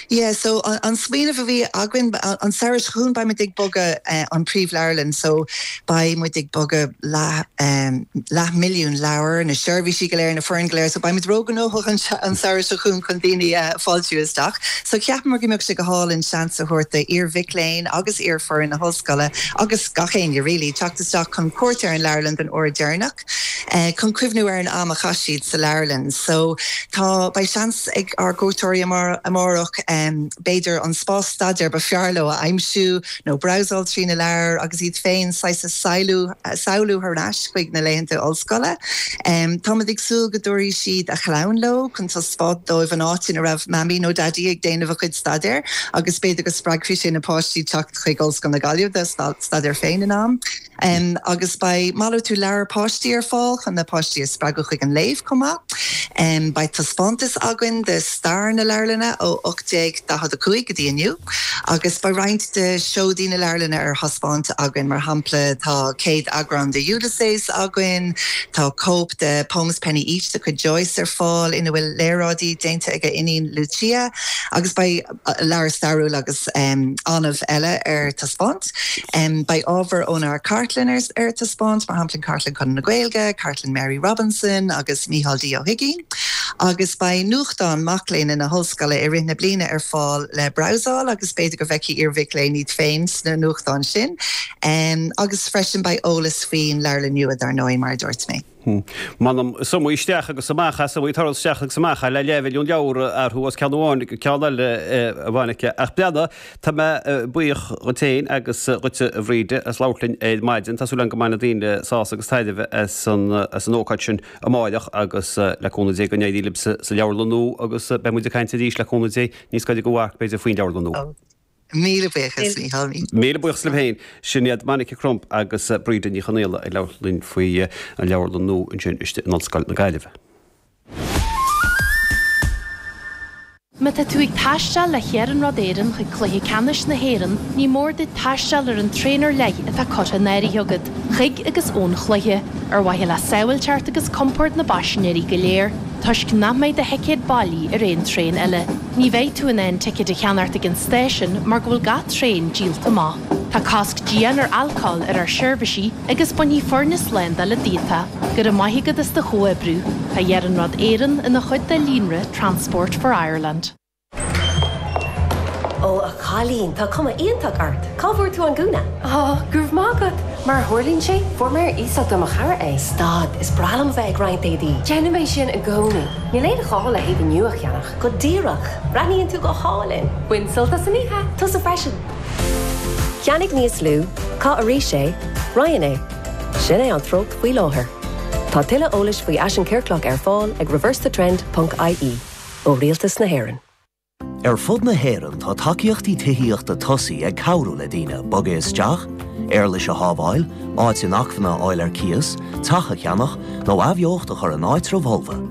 Yeah, so an smaoineamh a bhí againn an samhradh seo chugainn beidh muid ag bogadh an príomhleabharlann so beidh muid ag bogadh leath eh leathmhilliún leabhar, na seirbhísí go léir, na foireann go léir so beidh muid ró-ghnóthach an an samhradh seo chugainn chun daoine a fáiltiú isteach. So cheapamar go mbeadh sé go hálainn seans a thabhairt d'iar-mhic léinn agus iar-fhoireann na hollscoile agus gach éinne really teacht isteach chun cuairt ar an leabharlann don uair dheireanach. chun cuimhniú ar an am a chaith siad sa leabharlann. So tá, beidh seans ag ár gcuairteoirí amárach b'fhéidir an spás staidéir ba fearr leo a aimsiú nó brabhsáil trí na leabhair agus iad féin saghas a samhlú thar n-ais chuig na laethanta ollscoile. Táimid ag súil go dtabharfaidh siad a chlann leo chun taispeáint dóibh an áit ina raibh Mamaí nó Daidí ag déanamh a chuid staidéir agus b'fhéidir go spreagfaidh sé na páistí teacht chuig Ollscoil na Gaillimhe dá staidéar féin in am. agus beidh malartú leabhar páistí ar fáil chun na páistí a spreagadh chuig an léamh chomh maith. Beidh taispeántas againn de stair na leabharlainne ó 1845 go dtí inniu agus beidh roinnt de seodaí na leabharlainne ar thaispeáint againn, mar shampla tá céad-eagrán de Ulysses againn, tá cóip de Pomes Penyeach de chuid Joyce ar fáil ina bhfuil léaráidí déanta ag a iníon Lucia agus beidh. leabhair stairiúil agus annamh eile ar taispeáint. Beidh ábhar ónár gcartlann ar taispeáint, mar shampla Cartlann Chonradh na Gaeilge, Cartlann Mary Robinson agus Mícheál D. Ó hUigínn, agus beidh nuachtán mac léinn na hOllscoile i rith na bliana ar fáil le brabhsáil agus b'fhéidir go bhfeicfidh iarmhic léinn iad féin sna nuachtáin sin. Agus freisin beidh eolas faoin Leabharlann Nua, dar ndóigh, mar a dúirt mé. M'anam, is iomaí isteach agus amach as, iomaí turas isteach agus amach as, le leathmhilliún leabhar a athrú as ceann amháin go ceann eile ann. Ach tá mé buíoch dhuit féin agus dhuit, a Bhríd, as labhairt linn ar maidin. Tá súil agam go mbainfidh daoine sásamh agus taitneamh as an ócáid sin amáireach agus, le cúnamh Dé, go n-éirí libhse sa leabharlann nua, agus beidh muid ag caint arís, le cúnamh Dé, níos gaire don mharc, b'fhéidir, faoin leabharlann nua. Míle buíochas, a Mhichíl, míle. Míle buíochas libh féin. Sin iad Monica Crump agus Bríd Ní Chonghaola ag labhairt linn faoi an leabharlann nua ansin istigh in Ollscoil na Gaillimhe. Má tá tú ag taisteal le hIarnród Éireann chuig Cluiche Ceannais na hÉireann, ní mór duit taisteal ar an traein ar leith atá curtha in áirithe agat chuig agus ón chluiche, ar mhaithe le sábháilteacht agus compord na bpaisinéirí go léir, toisc nach mbeidh do thicéad bailí ar aon traein eile. Ní bheidh tú in ann ticéid a cheannacht ag an stáisiún mar go bhfuil gach traen díolta amach. Tá cosc dian ar alcóil ar ár seirbhísí agus bainfidh foirne slándála díot é. Go raibh maith agat as do chomhoibriú. Tá Iarnród Éireann ina chuid de líonra Transport for Ireland. Ó a chailín, tá cuma iontach ort. Cá bhfuair tú an gúna? Ó, go raibh maith agat. Mar a tharlaíonn sé, fuair mé ar iasacht ó mo chara é. Stad, is breá liom a bheith ag roinnt éadaí. Déanaim é sin i gcónaí. Níl aon ghá le héadaí nua a cheannach. Go díreach! Breathnaíonn tú go hálainn! Bain sult as an oíche! Tusa freisin! Ceannaigh níos lú, caith arís é, Roinn é. Sin é an treocht faoi láthair. Tá tuilleadh eolais faoi fhaisean ciorclach ar fáil ag reversethetrend ponc ie, ó Rialtas na hÉireann. Ar fud na hÉireann tá tacaíochtaí tithíochta tosaithe ag cabhrú le daoine bogadh isteach, éarlais a shábháil, áit inacmhainne a fháil ar cíos, teach a cheannach, nó athbheocht a chur in áitribh fholmha.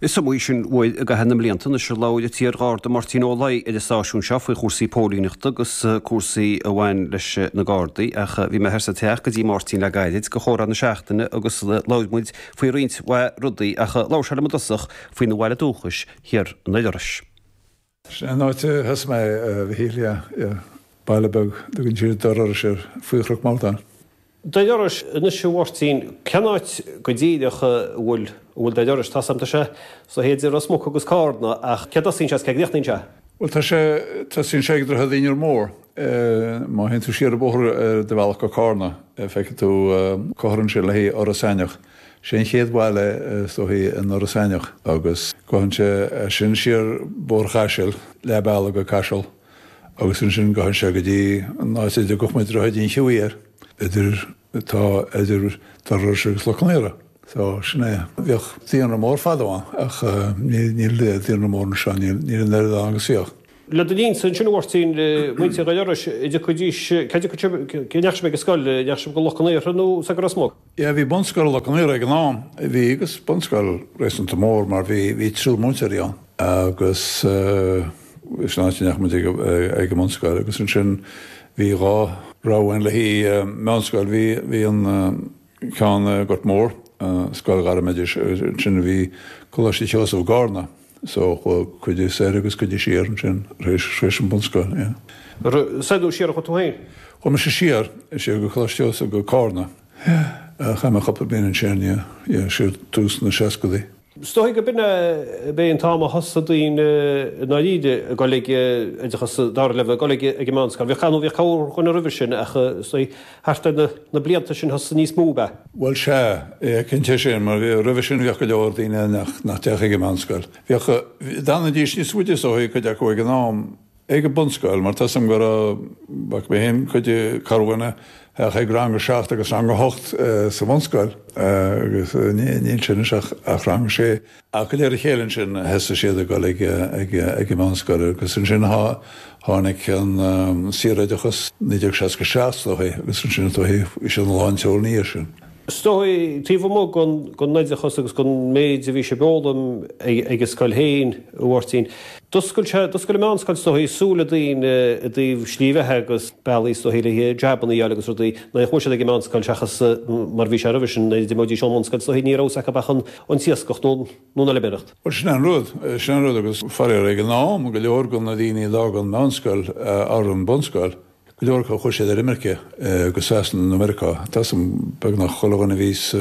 Is iomaí sin uair i gcaitheamh na mblianta anois ar labhair an t-iar-Gharda Máirtín Ó Laoi ar an stáisiún seo faoi chúrsaí póilíneachta agus cúrsaí a bhain leis na Gardaí ach bhí mé thiar sa teach go dtí Máirtín le gairid do chomhrá na seachtaine agus labhair muid faoi roinnt mhaith rudaí ach labhair sé liom i dtosach faoina bhaile dúchais, thiar i nDoire Iorrais. Sin an áit a thosaigh mé, a Mhichíl, yeah, baile beag a dtugann siad Doire Iorrais air faoi Chnoc Mordáin. Doire Iorrais anois, a Mháirtín, cén áit go díreach a bhfuil, an bhfuil Doire Iorrais, tá a fhios agam tá sé suite idir Ros Muc agus Cárna, ach cé a dtosaíonn sé agus cé a gcríochnaíonn sé? Bhuel, tá sé, tosaíonn sé ag Droichead Inbhear Mór. Má théann tú siar an bóthar ar do bhealach go Cárna, feicfidh tú comhartha ansin le haghaidh Iorras Aithneach. Sé an chéad bhaile is dóichí in Iorras Aithneach agus gabhann sé as sin siar Bóthar Chaisil, leath bealaigh go Caiseal agus ansin gabhann sé go dtí an áit a dtugadh muid Droichead an Cheamhaír, idir, atá idir Doire Iorrais agus Loch Con Aortha. So, sin é. Bhíodh daonra mór fadó ann ach níl daonra mór anseo, níl an oiread ann agus a bhíodh. Le do linn-sa ansin a Mháirtín, muintir Dhoire Iorrais, a dtiocfaidís, cad a, cé a ndeachaigh sibh ag an scoil, a ndeachaigh sibh go Loch Con Aortha nó soir go Ros Muc? Sea, bhí bunscoil Loch Con Aortha ag an am, bhí, agus bunscoil réasúnta mór mar bhí, bhí triúr múinteoirí ann agus sin áit a ndeachaigh muid ag an mbunscoil agus ansin bhí dhá rogha ann le haghaidh meánscoil, bhí, bhí an ceann i nGort Mór, Scoil Ghairmoidis, agus ansin bhí Coláiste Sheosaimh i gCárna. So, chuaigh cuid soir agus cuid siar ansin, tar éis, tar éis an bunscoil, yeah. Soir nó siar a chuaigh tú féin? Chuaigh mise siar, siar go Coláiste Sheosaimh, go Carna, yeah. Chaith mé cúpla bliain ansin, yeah, yeah, siar tús na seascadaí. Is dóigh gurb in é an t-am a thosaigh daoine i ndáiríre ag dul ag, oideachas dara leibhéal, ag dul ag an meánscoil. Bhíodh, bhíodh corrdhuine roimhe sin ach is dóigh, Thart ar na blianta sin thosaigh níos mó a. Bhuel, sea, cinnte é sin, mar roimhe sin bhíodh go leor daoine ann nach dtéadh ag an meánscoil. Bhíodh, d'fhanaidís níos faide is dóichí, cuid acu ag an am, ag an mbunscoil, mar tá a fhios agam go raibh, bhfaca mé féin, cuid, corrdhuine a théadh ag rang a seacht agus rang a hocht sa mbunscoil agus níl sé anois ach rang a sé. Ach de réir a chéile ansin, thosaigh siad ag dul ag an mheánscoil agus ansin tháinig an saoroideachas 1967 is dóigh agus ansin is dóigh bhí siad lán seoil ina dhiaidh sin. Is dóigh, taobh amuigh den oideachas agus den mhéid a bhí sé ag foghlaim ag an scoil féin a Mháirtín, d'oscail sé, d'oscail an mheánscoil is dóigh, súile daoine i dtaobh slí bheatha agus bealaí is dóigh le jabanna a fháil agus rudaí nach mbeadh siad ag an mheánscoil seachas mar a bhí sé roimhe sin, nuair a d'imeoidís ón mbunscoil is dóigh ní raibh fhios acu ach an an t-iascach nó an fheilméaracht. Bhuel, sin an rud. Sin an rud agus, faraor, ag an am, go leor de na daoine a d'fhág an mheánscoil or an bunscoil, go leor acu, chuaigh siad ar imirce go Sasana nó Meiriceá. Measaim, beagnach chuile dhuine a bhí sa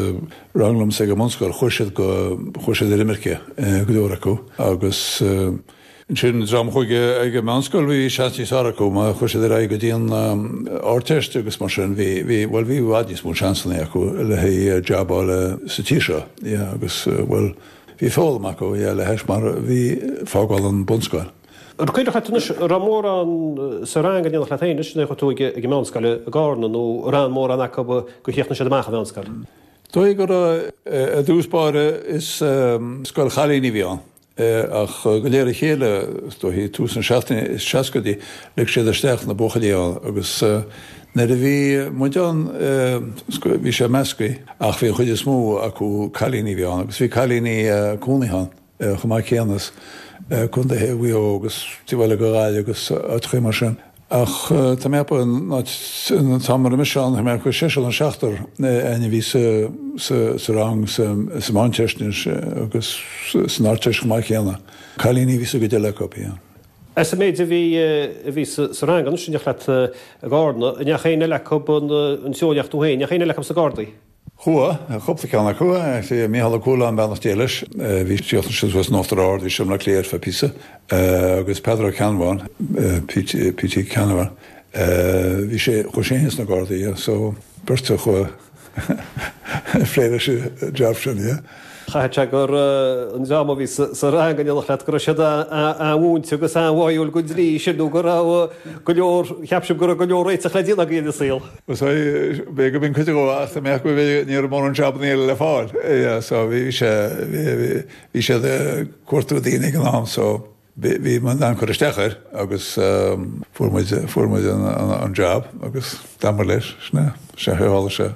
rang liomsa ag an mbunscoil, chuaigh siad go, chuaigh siad ar imirce, go leor acu agus, Ansin, dream a chuaigh ag an meánscoil, bhí seans níos fearr acu má chuaigh siad ar aghaidh go dtí an Ardteist agus mar sin, bhí, bhí, bhuel, bhí i bhfad níos mó seansanna acu le haghaidh jab a fháil sa tír seo. Yeah, agus, bhuel, bhí foghlaim acu, yeah, le hais mar bhí fágáil an bunscoil. An cuimhneach leat anois, an raibh mórán sa rang in éineacht leat féin anois, nuair a chuaigh tú ag, ag an meánscoil i gCárna nó an raibh mórán acu a chríochnaigh siad amach an mheánscoil? Tuigim gur, i dtús báire, is scoil chailíní a bhí ann. é ach de réir a chéile, is dóigh, tús na seachtain na seascaidí, lig siad isteach na buachaillí ann agus nuair a bhí muid ann, bhí sé measctha ach bhí an chuid is mó acu cailíní a bhí ann agus bhí cailíní cónaithe ann chomh maith céanna as Contae Mhaigh Eo agus, taobh ó thuaidh de Ghaillimh agus áiteachaí mar sin. Ach tá mé ag ceapadh nuair a bhí mise ann, tá mé ag ceapadh go seisear nó seachtar againn a bhí sa rang sa mheánteist ansin agus san ardteist chomh maith céanna. Cailíní a bhí sa gcuid eile acu. As an méid a bhí sa rang anois, tusa i do Gharda, an ndeachaigh éinne eile acu an tslí a chuaigh tú féin, an ndeachaigh éinne eile acu sna Gardaí? Chuaigh cúpla ceann acu, Mícheál Ó Cualáin, beannacht Dé leis, bhí sé thuas in Uachtar Ard, is i mBaile Átha Cliath ar feadh píosa, agus Peadar Ó Ceannbháin, P.T. Canavan, bhí sé, chuaigh sé fhéin sna Gardaí, so beirt a chuaigh ag plé leis an jab sin, yeah. Chaithfeadh sé gur an dream a bhí sa rang in éineacht leat, go raibh siad an-mhúinte agus an-bháúil den dlí sin nó go raibh go leor, cheap siad go raibh go leor réiteach le déanamh ag daoine sa saol. Sea, b'fhéidir go mb'in cuid de ach ag an am b'fhéidir, ní raibh mórán jabanna eile le fáil. Sea, bhí sé, bhí siad ag cuartú daoine ag an am. Bhí muid in ann cur isteach air agus fuair muid, fuair muid an jab agus d'fhanamar leis, sin é, an chaoi ar tharla sé.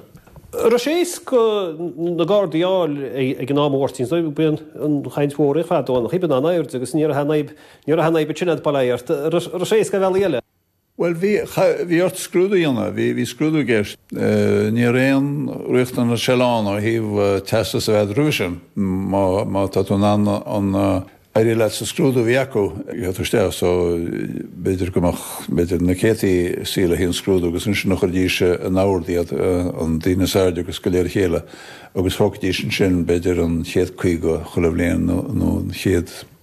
Raibh sé éasca sna gardaí a fháil ag an am a Mháirtín, so bhí an chaint mhór ar fad ann, bhí an airde agus ní raibh an fhadhb, ní raibh an fhadhb sin ag plé ort, raibh sé éasca ar bhealaí eile. Bhuel, bhí, bhí ort scrúdú a dhéanamh, bhí, bhí scrúdú i gceist. Ní raibh aon riachtanas sin ann ó thaobh teastas a bheith agat roimhe sin. Má, má tá tú in ann an, éirí leat sa scrúdú a bhí acu, gheobhaidh tú isteach. So, b'fhéidir go mbeadh, b'fhéidir na céadta ag suí an scrúdú agus ansin chuirfidís in ord iad, an, daoine is airde agus de réir a chéile agus thógfaidís ansin b'fhéidir an chéad caoga chuile bhliain nó an chéad,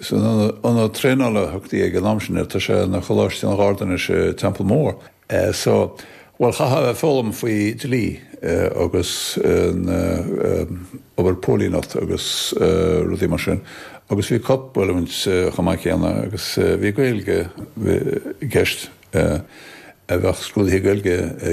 San ionad traenála a thugtaí ag an am sin air, tá sé ina Choláiste an Gharda anois, i Templemore. So, bhuel, chaithfeá foghlaim faoi dlí agus na, obair póilíneachta agus rudaí mar sin agus bhí corpoiliúint chomh maith céanna agus bhí Gaeilge i gceist, bheadh scrúduithe Gaeilge